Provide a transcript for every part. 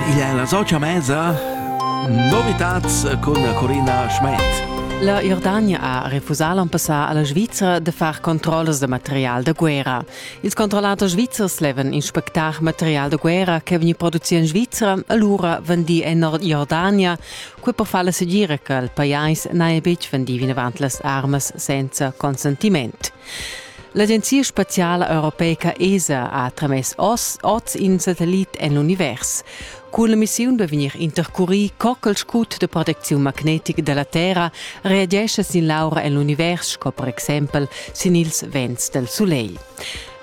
Il è la socia mesa Novitats cun Corina Schmed. La Jordania ha refusà l'an passà a la Svizra de far controllas de material da guerra. Ils controllatori svizzers levan inspectar material da guerra che vegni produci in Svizra allura vendi en Jordania, quei per far la segira che il pajais n'ha betg vendi vinavant las armas senza consentiment. L'agenzia spaziala europeica ESA ha tramess oz, oz in satellit en l'univers. Cun la missiun da vegnir intercurì co ch'il scut da protecziun magnetic da la Terra reagescha sin l'aura en l'univers, sco per exempel sin ils vents dal sulegl.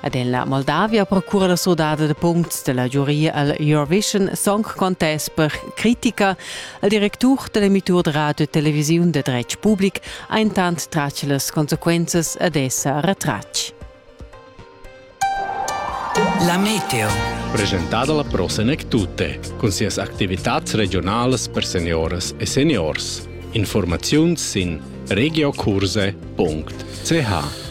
Ed en la Moldavia procura la surdada da puncts da la giuria al Eurovision Song Contest per critica. Il directur da l'emittur da radio e televisiun da dretg public ha intant tratg las consequenzas ed è sa retratg. La meteo. Presentada la Pro Senec Tutte, cun sias activitads regionalas per senioras e seniors. Informaziuns sin regiocurse.ch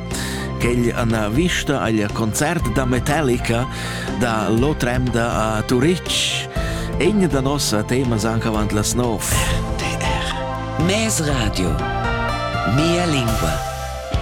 Quegl ana vista agl concert da Metallica da L'Otremda a Turitg, egn da nossa temas anc avant las nov. RTR Mes radio. Mia lingua.